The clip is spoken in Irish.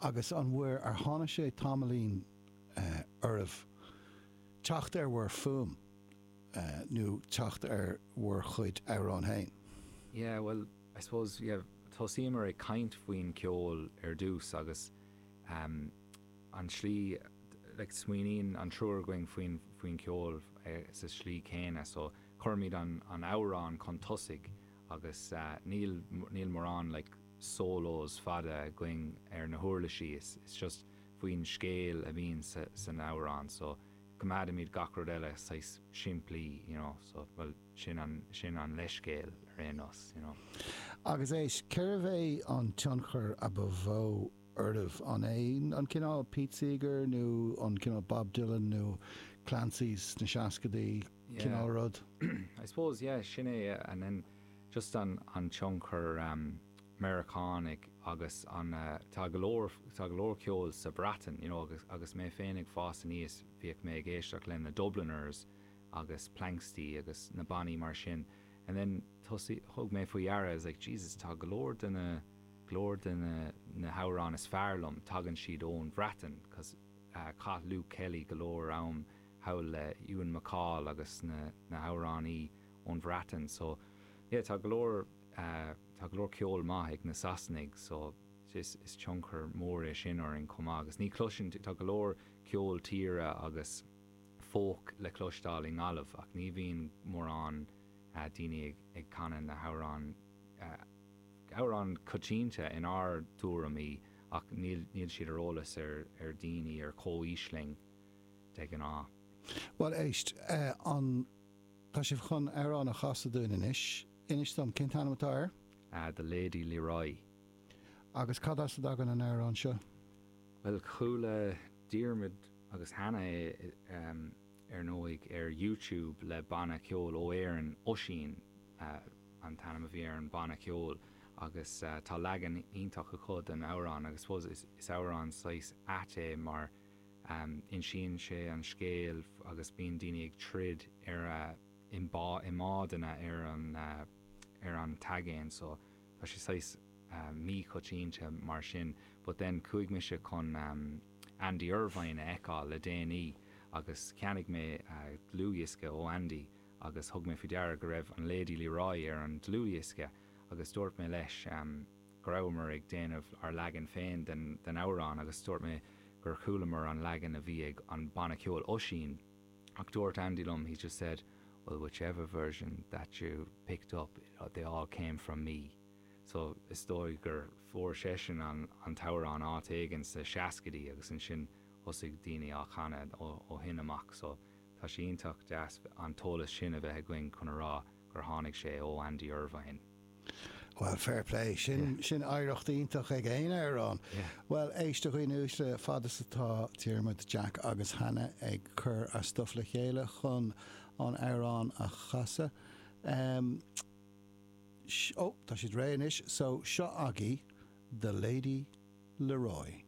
Agus an bhfuair, ar tháinig sé tamaillín oraibh teacht ar bhur bhfuaim nó teacht ar bhur gcuid amhrán féin? Yeah, bhuel, I suppose, yeah, thosaíomar ag caint faoin ceol ar dtús agus an slí, like, smaoiníonn an triúr againn faoin, faoin ceol sa slí céanna, so cuirimid an amhrán chun tosaigh agus níl níl morán like solos fada againn ar na huirlisí is it's just faoin scéal a bhíonn san amhrán so coimeádaimid gach rud eile saghas simplí you know so bhuel sin an sin an leithscéal ar aon nós you know. Agus éist, cérbh é an tionchar ba mhó oraibh. An é an cineál Pete Seeger nó an cineál Bob Dylan nó Clancy's sna seascadaí cineál rud? I suppose, yeah, sin é and then just an tionchar Meiriceánach agus an, tá go leor, tá go leor ceoil sa Bhreatain, you know, agus mé féin ag fás aníos bhíodh mé ag éisteacht le na Dubliners agus Planxty agus na bannaí mar sin and then thosaigh, thug mé faoi dheara I was like Jesus tá go leor de na go leor de na hamhráin is fearr liom, tagann siad ón Bhreatain cos chaith Luke Kelly go leor am thall le Ewan MacColl agus na na hamhránaí ón Bhreatain so yeah tá go leor tá go leor ceol maith ag na Sasanaigh so is is tionchar mór é sin orainn chomh maith agus ní chloiseann tú tá go leor ceol tíre agus folk le cloisteáil i nGaillimh ach ní bhíonn mórán daoine ag ag canadh na hamhráin Amhrán coitianta in ár dtuairimí ach níl siad ar eolas ar daoine ar comhaois linn de ghnáth. Bhuel, éist, an tá sibh chun amhrán a chasadh dúinn anois? Inis dom, cén t-ainm atá air? The Lady Leroy. Agus cad as a dtagann an amhrán seo? Bhuel, chuala Diarmuid agus Hannah. ar ndóigh, ar YouTube le banna ceoil ó Éirinn, Oisín an t-ainm a bhí ar an bhanna ceoil agus tá leagan iontach acu den amhrán agus suppose is amhrán saghas ait é mar insíonn sé an scéal agus bíonn daoine ag troid ar a i mbádanna ar an ar an aigéan so tá sé saghas míchoitianta mar sin but then chuaigh mise chun Andy Irvine a fheiceáil le déanaí agus cheannaigh mé dlúthdhiosca ó Andy agus thug mé faoi deara go raibh an Lady Leroy ar an dlúthdhiosca agus dúirt mé leis go rabhamar ag déanamh ár leagan féin den amhrán agus dúirt mé gur chualamar an leagan a bhí ag an banna ceoil Oisín. Ach dúirt Andy liom, he just said, well whichever version that you picked up, they all came from me. So is dóigh gur fuair seisean an t-amhrán áit éigin sna seascaidí agus ansin thosaigh daoine á chanadh ó shin amach. So tá sé iontach deas an t-eolas sin a bheith againn chun a rá gur tháinig sé ó Andy Irvine. Bhuel fair play, sin oidhreacht iontach ag aon amhrán. Bhuel éistigí a dhaoine uaisle, fad is atá Diarmuid, Jack agus Hannah ag cur a stuff le chéile chun an amhrán a chasadh. Ó tá siad réidh anois, so seo agaí The Lady Leroy.